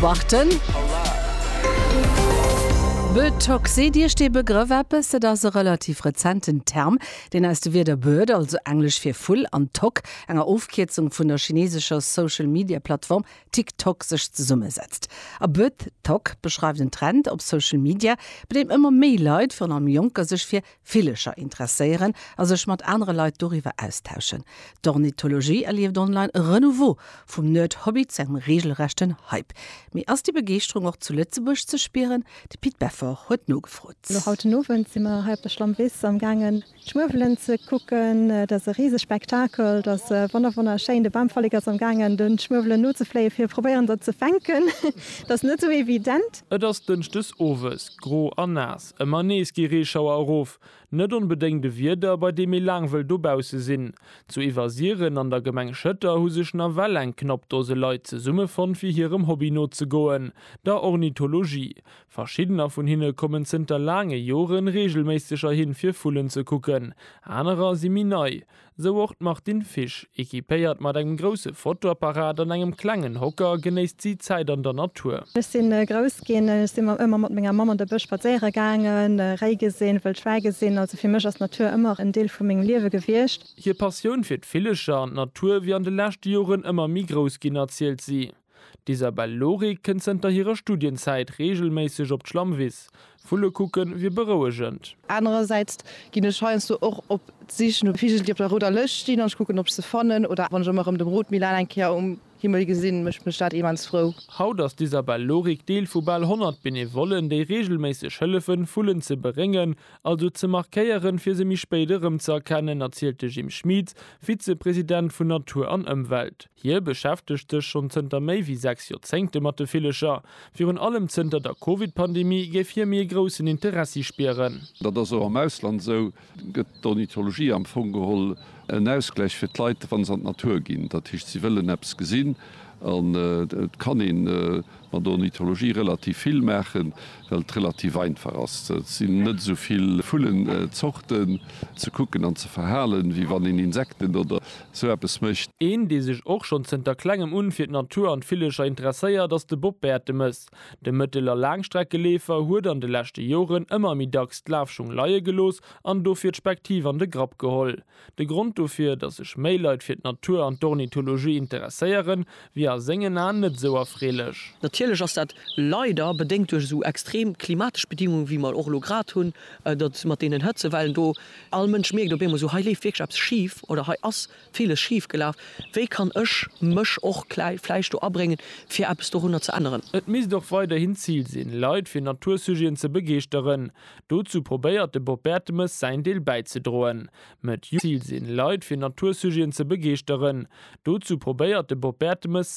Warten. Bötox, seet Iech dee Begrëff eppes? Et ass e relativ rezenten Term, deen aus de Wierder Bird, also englesch fir Vull, an Tok, enger Ofkierzung vun der chinesescher Social-Media-Plattform TikTok, sech zesummesetzt. A Bötox beschreift en Trend op Social Media, bei deem ëmmer méi Leit, virun allem Jonker, sech fir Villecher interesséieren a sech mat anere Leit doriwwer austauschen. D'Ornithologie erlieft online e Renouveau, vum Nerd-Hobby zu engem reegelrechten Hype. Mee ass déi Begeeschterung och zu Lëtzebuerg ze spieren? De Pit Beffort huet nogefrot. Elo haut den Owend si mer hei op der Schlammwiss am gaangen d'Schmuewelen ze kucken. Et ass e riseg Spektakel, et ass wonner wonner schéin. De Bamvollek ass am gaangen den Schmuewelen nozefléien fir probéieren der ze fänken. Et ass net esou evident. Et ass Dënschdes owes, gro a naass. Ëmmer nees gi Reeschauer erof, net onbedéngt e Wieder, bei deem ee laang wëll dobausse sinn. Zu Iwwersiren an der Gemeng Schëtter hu sech nawell eng knapp Dose Leit zesummefonnt, fir hirem Hobby nozegoen, der Ornithologie. Verschiddener vun hinne kommen zënter laange Joren reegelméisseg erhin, fir Vullen ze kucken, anerer si méi nei, Sou och d'Martine Fisch. Ekipéiert mat engem grousse Fotoapparat an engem klengen Hocker genéisst si d'Zäit an der Natur. Ech si grouss ginn, ech si ëmmer mat menger Mamm an de Bësch spadséiere gaangen, Réi gesinn, wëll Schwäi gesinn. Also fir mech ass d'Natur ëmmer en Deel vu mengem Liewe gewiescht. Hir Passioun fir d'Villecher an d'Natur wier an de leschte Joren ëmmer méi grouss ginn, erzielt si. D'Isabelle Lorig kënnt zënter hirer Studienzäit reegelméisseg op d'Schlammwiss. Vulle kucke wier berouegend. Anerersäits ginn ech heiansdo och op d'Sich no Vigel, déi op der rouder Lëscht stinn, an ech kucken, ob ech se fannen. Oder wann ech ëmmer erëm de Rotmilan eng Kéier um Himmel gesinn, mécht mech dat immens frou. Haut ass d'Isabelle Lorig Deel vu bal 100 Benevollen, déi reegelméisseg hëllefen, Vullen ze beréngen, also ze markéieren, fir se méi spéit erëmzëerkennen, erzielt de Jim Schmieds, Vizepresident vun Natur an Ëmwelt. Hie beschäftegt sech schonn zënter méi wéi sechs Joerzéngte mat de Villecher. Virun allem zënter der Covid-Pandemie géif hie méi e groussen Interessi spieren. Dat ass och am Ausland esou. Gëtt d'Ornithologie am Fong geholl en Ausgläich fir d'Leit, wa se an d'Natur ginn? Dat heescht, si wëllen eppes gesinn an et kann een. An der Ornithologie relativ vill maachen, well et relativ einfach ass. Et sinn net esou vill Vullenzorten ze kucken an ze verhalen, wéi wann een Insekten oder esou eppes mécht. Een, dee sech och schonn zënter Klengem un fir d'Natur an d'Villecher interesséiert, ass de Bob Bertemes. De Mëttel a Laangstreckeleefer huet an de leschte Joren ëmmer méi dacks d'Lafschung leie gelooss an dofir d'Spektiv an de Grapp geholl. De Grond dofir, dass sech méi Leit fir d'Natur an d'Ornithologie interesséieren, wier a sengen Aen net esou erfreelech. Natierlech ass dat leider bedéngt duerch esou extrem klimatesch Bedingungen, wéi mer och elo grad hunn, datt mat deenen Hëtzewellen do, all Mënsch mierkt op eemol esou, hei leeft wierklech eppes schif oder hei ass viles schif gelaf, wéi kann ech mech och klei vläicht do abréngen, fir eppes dorunner ze änneren. Et misst och weiderhin d'Zil sinn, Leit fir Natursujeten ze begeeschteren. Dozou probéiert de Bob Bertemes säin Deel bäizedroen. Met Youth Ziel sinn, Leit fir Natursujeten ze begeeschteren. Dozou probéiert de Bob Bertemes säin.